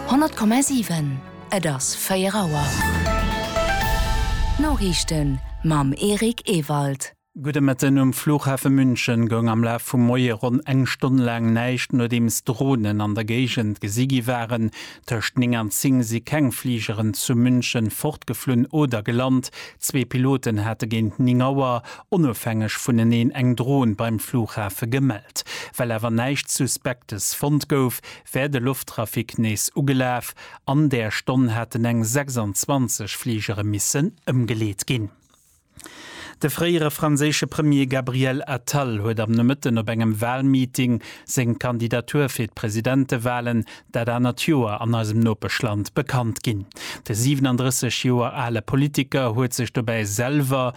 100,7 Et ass 4 Auer. D'Noriichten mam Eric Ewald. Gudde Mëtten. Um Flughafe München goung am Laf vum Moie ronn eng Stonn laang näischt, nodeems Dronen an der Géigend gesi gi waren. Tëscht 9 an 10 si keng Fligeren zu München fortgeflunn oder gelant. Zwee Piloten hate géint 9 Auer onofhängeg vuneneen eng Dron beim Flughafe gemellt. Well awer näischt Suspektes fonnt gouf, wär de Lofttrafic nees ugelaf. An där Stonn haten eng 26 Fligere missen ëmgeleet ginn. De fréiere franséische Premier Gabriel Attal huet am Nomëtten op engem Walmeeting seng Kandidatur fir d'Presidentewalen dat anert Joer an eisem Nopeschland bekannt ginn. De 37 Joer ale Politiker huet sech dobäi selwer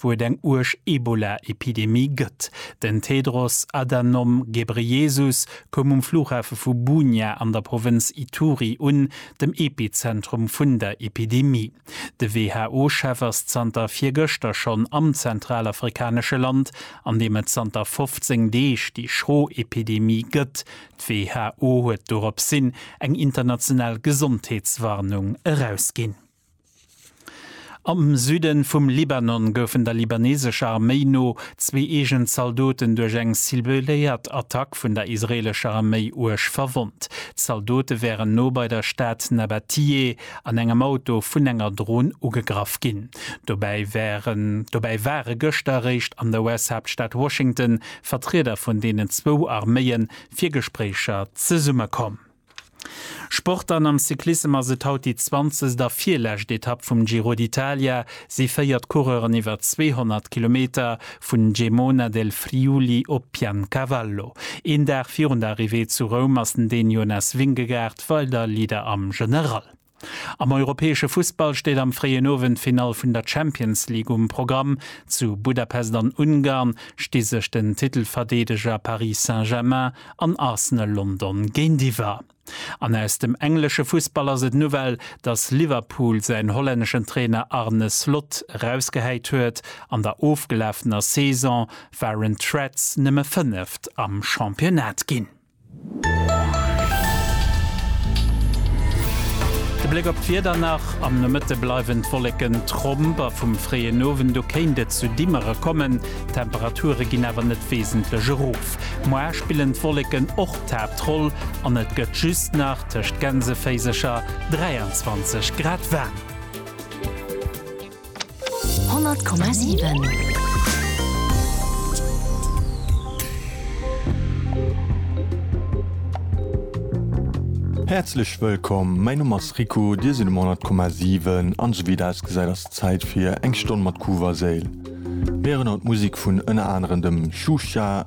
wou et eng uerg Ebola-Epidemie gëtt. Den Tedros Adhanom Ghebreyesus koum um Flughafe vu Bunia an der Provënz Ituri un, dem Epizentrum vun der Epidemie. De WHO-Chef ass zanter virgëschter schonn am zentralafrikanesche Land, an deem et zanter 15 Deeg déi schro Epidemie gëtt. D'WHO huet doropshin eng international Gesondheetswarnung erausginn. Am Süde vum Libanon goufen der libanesescher Arméi no zwee eegen Zaldoten duerch eng cibléiert Attack vun der israeelescher Arméi uerg verwonnt. D'Zaldote wären no bei der Stad Nabatiyeh an engem Auto vun enger Dron ugegraff ginn. Dobäi ware gëschter eréischt an der US-Haaptstad Washington Vertrieder vun deenen zwou Arméie fir Gespréicher zesummekomm. Sport an am Cyclissem ass et haut déi zwanzegst a virlescht Etapp vum Giro d'Italia. Si féiert d'Coureuren iwwer 200 Kilometer, vun Gemona del Friuli op Piancavallo. Een Dag virun der Arrivée zu Roum ass den Daniel Jonas Vingegaard weider Leader am General. Am europäesche Fussball steet am fréien Owend d'Finall vun der Champions League um Programm. Zu Budapest an Ungarn sti sech den Titelverdeedeger Paris Saint-Germain an Arsenal London géintiwwer. An aus dem englesche Fussball ass et d'Nouvelle, datt Liverpool säin hollänneschen Trainer Arne Slot erausgehäit huet. An der ofgelafener Saison waren d'Reds nëmme Fënneft am Championnat ginn. De Bléck op d'Wieder nach, Am Nomëtte bleiwen d'Wolleken tromp a vum fréien Owend u kéint et zu Dimmere kommen. D'Temperature ginn awer net wesentlech erof. Moar spillen d'Wolleken och d'Haaptroll an et gëtt just nach tëscht Gänseféisercher 23 Grad waarm. Häerzlech wëllkomm, mäin Numm ass Rico, dir sidd um 100,7 an esou wéi et ausgesäit ass et Zäit fir eng Stonn mat Kuuw a Séil. Mir héieren haut Musik vun ënner anerem dem Shusha,